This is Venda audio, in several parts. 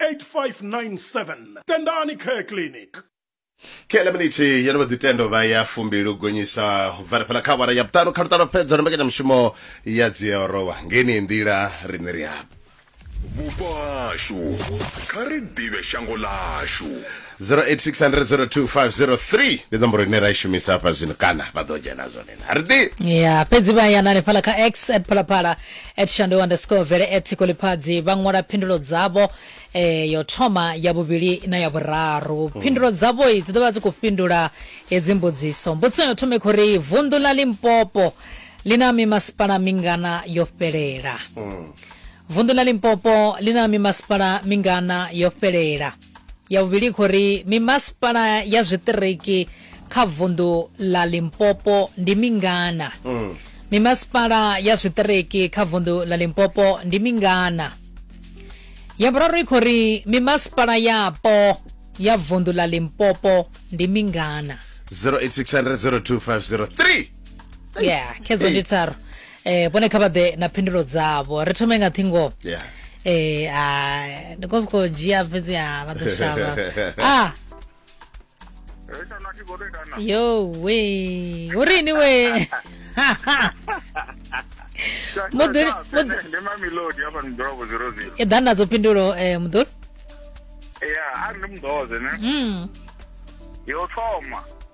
8597 tendani care clinic kele miniti yo no vha ḓitendo vha ya fumbili u gonyisa u bvela fhala kha awara ya vhuṱanu kha luṱalo fhedza no mbekanyamushumo ya dziorowa ngeni nḓila riṋe ri hapa vhupo hashu kha ri ḓivhe shango ḽashu 0860025003 ndi nomboro ine ra i shumisa hafha zwino kana vha ḓo dzhena zwone na ri ḓi ya fhedzi vha yana hanefhala kha x at phalaphala at shando underscore vele at thiko ḽiphadzi vha ṅwala phindulo dzavho eh, yo thoma ya vhuvhili na ya vhuraru phindulo dzavho i dzi ḓo vha dzi khou fhindula hedzi mbudziso mbudziso yo thoma i khou ri vunḓu ḽa limpopo ḽi na mimasipala mingana yo fhelela vunḓu ḽa limpopo ḽi na mimasipala mingana yo fhelela ya vhuvhili khou ri mimasipala ya zwiṱiriki kha vunḓu ḽa limpopo ndi mingana mm. mimasipala ya zwiṱiriki kha vunḓu ḽa limpopo ndi mingana ya vhuraru i khou ri mimasipala yapo ya vunḓu ḽa limpopo ndi mingana 08600 yeah khedzo ndi tharu eh vhone kha vha ḓe na phindulo dzavho ri thome nga ṱhingo yeah. eh a ndi khou sokou dzhia fhedzi a vha ḓo shavha ah yo we u rini we muḓuri i ḓa nadzo phindulo eh muḓuri ya a ndi muḓoze ne mm. yo thoma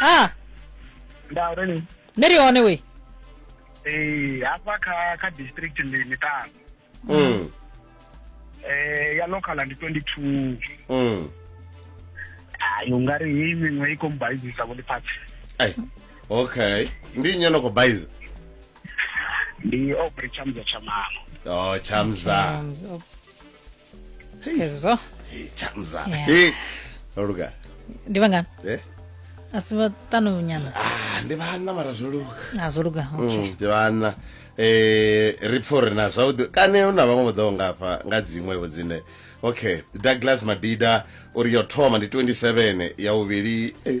a nda uri ni ni ri hone we eh hafha kha kha district ndi miṱanu Mm. eh ya local ndi 22 Mm. hayi ungari heyi miṅwe i khou mbaizisa vho ndi phatsi Ai. Okay. Ndi nnyi no kho baiza? ndi obre chamza chamano Oh, chamza. Um, hezwo Hey, chamza Yeah. Hey, loluka ndi vangani Eh? asi vatano nyana Ah, ndi vhanna mara zwo luka azwo luga okay Mm, ndi vhanna eh ri pfha uri na zwavhuḓi kane hu na vhaṅwe vho ḓaho ngafha nga dziṅwevho dzine okay douglas madida uri yo thoma ndi 27 ya vhuvhili eh,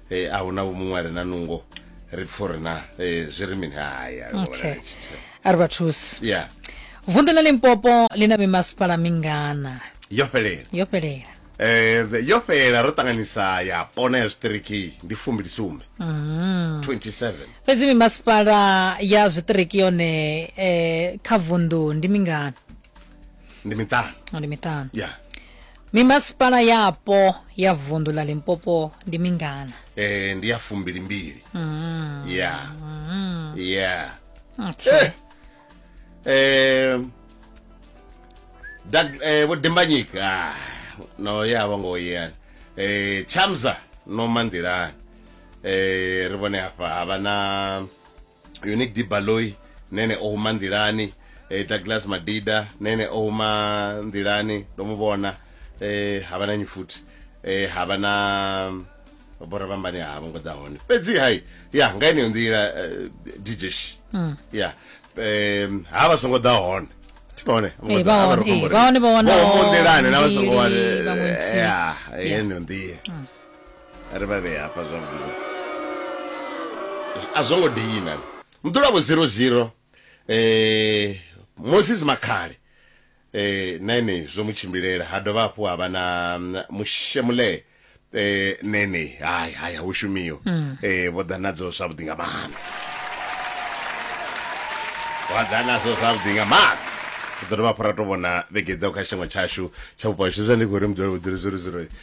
e, a hu na vho muṅwe a re na nungo ri pfa uri na e, zwi ri mini haya okay a ri vha thusi ya vunḓu ḽa limpopo ḽi na mimasipala mingana yo fhelela yo fhelela Eh, the- yo fhelela ro ṱanganisa ya pona ya zwiṱiriki ndi fumbili sumbe 27 fhedzi mimasipala ya zwiṱiriki yone eh, kha vunḓu ndi mingana ndi miṱanu no ndi miṱanu ya mimasipala yapo ya vundu la limpopo ndi mingana eh, ndi ya fumbili mbili mm. ya mm. ya okay. Eh. eh, Doug- eh, vho dimbanyika ah, no ya vho ngo yeyani eh, chamza no manḓilani eh, ri vhone hafha havha na unique dibaloy nene o huma nḓilani e, douglas madida nene o huma nḓilani ndo mu vhona e, ha vha na nyi futhi e, ha vha na bora vhambani ha vho ngo ḓa hone fhedzi hai ya nga ineyo nḓila e, djsh hmm. ya um, ha vha songo ḓa hone tibone eh, vhaone vhaononḓilane na vha songo wane ya heneyo nḓila ri vha vhee hafha zwavhuḓi a zwo ngo deina muḓulavo 00 eh moses makhale eh na ene zwo mu tshimbilela ha dovha hafhu ha vha na mm, mushemulee eh nene hai hai hu shumiwa eh vho ḓa nadzo zwavhuḓi nga maanḓa vha ḓa nadzo zwavhuḓi nga maanḓa ri ḓo dovha hafhu ra to vhona vhege ḓaho kha tshiṅwe tshashu tsha vhupo hashu zwa ndi khou ri mudzulapo 00